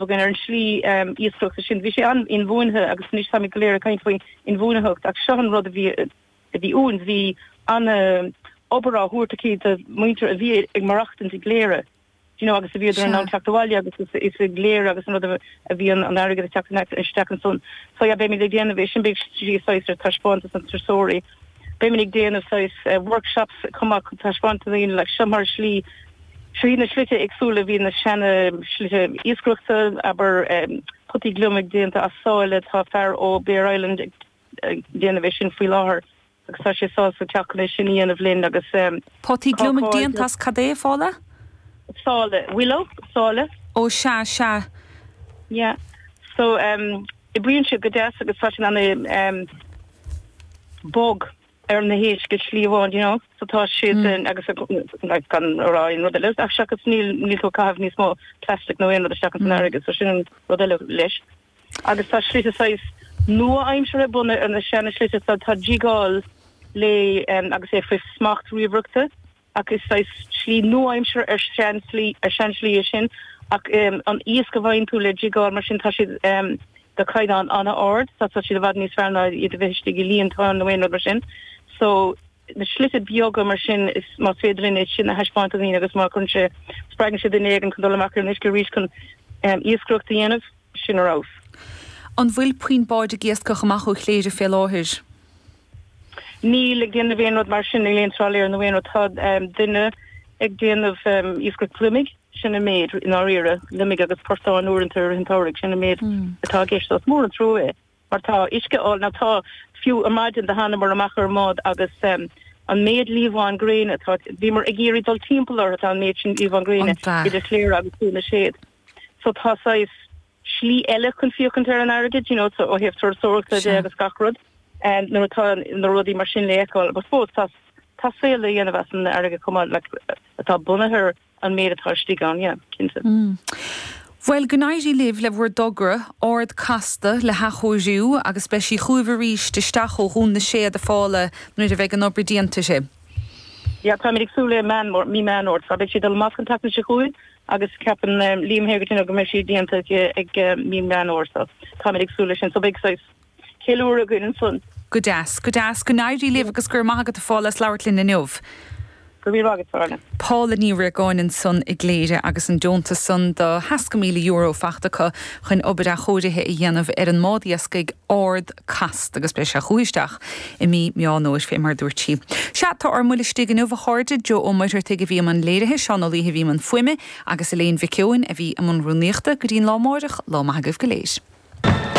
againn ar an slí iascaireachta sin. Bhí sé an-inbhuanaithe agus anois táimid go léir ag caint faoi inbhuanaitheacht ach seo an rud a bhí a bhí uainn. Bhí an-obair á thabhairt aici do mhuintir a bhí ag marachtaint i gCléire, d'you know, agus a bhíodar in ann teacht abhaile agus is i gCléire agus an rud a a bhí an t-airgead ag teacht isteach ansan. So yeah beimid ag déanamh é sin, beidh sí saghas ar taispeántas do thurasóirí. Beimid ag déanamh saghas workshops chomh maith chun taispeáint do dhaoine like, so mar shlí, trí na slite éagsúla a bhí, na seana slite iascaireachta, abair potaí gliomaigh déanta as saileach, tá fear ó Bere Island ag déanamh é sin faoi láthair agus tá sé sásta teacht chun é sin a dhéanamh linn agus ehm Potaí gliomaigh cácáil déanta as cad é, a Phaula? Saileach, willow, saileach. Ó sea, sea. Yeah, so ehm. Oibríonn siad go deas agus tá siad ana bog ar na héisc, slí amháin you know so tá siad in agus like gan a rá aon rud eile ach seachas níl níl tú ag caitheamh níos mó plastic nó aon rud isteach san fharraige so sin rud eile leis agus tá slite saghas nua aimseartha bunaithe ar na seana slite so tá jigeáil le agus é faoi smacht ríomhaireachta ach is saghas slí nua-aimseartha ar seanslí ar seanslí é sin ach an iasc a bhfaigheann tú le jigeáil mar sin tá siad de chaighdeán an-ard so tá siad i bhfad níos fearr ná iad a bheith istigh i líontáin nó aon rud mar sin so na slite beaga mar sin so más féidir linn é sin a thaispeáint do dhaoine agus má chuireann sé spreagann sé duine éigin chun dul amach ar an uisce arís chun iascaireacht a dhéanamh sin ar fheabhas. An bhfuil puinn báid ag iascach amach ó Chléire fé láthair? Níl ag déanamh aon rud mar sin, níl aon trálaer nó aon rud, tá duine ag déanamh iascaireacht gliomaigh, sin an méid, i ndáiríre, gliomaigh agus portáin uaireanta i rith an tsamhraidh, sin an méid atá i gceist. So is mór an trua é mar tá uisce álainn ann, tá, fiú ar maidin do thánamar amach ar an mbád agus an méid liamháin gréine atá, bhíomar ag iarraidh dul timpeall orthu, tá an méid sin liamháin gréine idir Chléire agus Dún na Séad. so tá saghas slí eile chun féachaint ar an fharraige, you know, so ó thaobh turasóireachta de agus gach rud, and nuair atá na rudaí mar sin le fheiceáil, but fós tá, tá saol le dhéanamh as an fharraige chomh maith, like, atá bunaithe ar an méid atá istigh ann, yeah, cinnte. Bhuel, go n-éirí libh le bhur dtogra, Ard Casta, le hathchóiriú agus beidh sí chugaibh arís isteach ó Dhún na Séad a Phaula nuair a bheidh an obair déanta di. Yeah, táimid ag súil le Meán Fómhair, mí Meán Fhómhair, so beidh sí ag dul amach an tseachtain seo chugainn, agus ceapann Liam Hegarty go mbeidh sí déanta ag mí Meán Fhómhair so táimid ag súil leis sin so beidh saghas ceiliúradh againn ansan. Go deas, go deas. Go n-éirí libh agus go raibh maith agat a Phaula as labhairt linn inniu. Go raibh míle maith agat, Orna. Paula Ní Riagáin ansan i gCléire agus an deontas san do sheasca míle euro fachta acu chun obair athchóirithe a dhéanamh ar an mbád iascaigh Ard Casta agus beidh sí chucu isteach I mí Meán Fhómhair, fé mar a dúirt sí. Sea, tá ár mbuille istigh inniu, a chairde, Joe Ó Muircheartaigh a bhí i mbun léirithe, Seán Ó Laoithe a bhí i mbun fuaime, agus Elaine Mhic Eoin a bhí i mbun rúnaíochta. Go dtí an lá amáireach, lá maith agaibh go léir.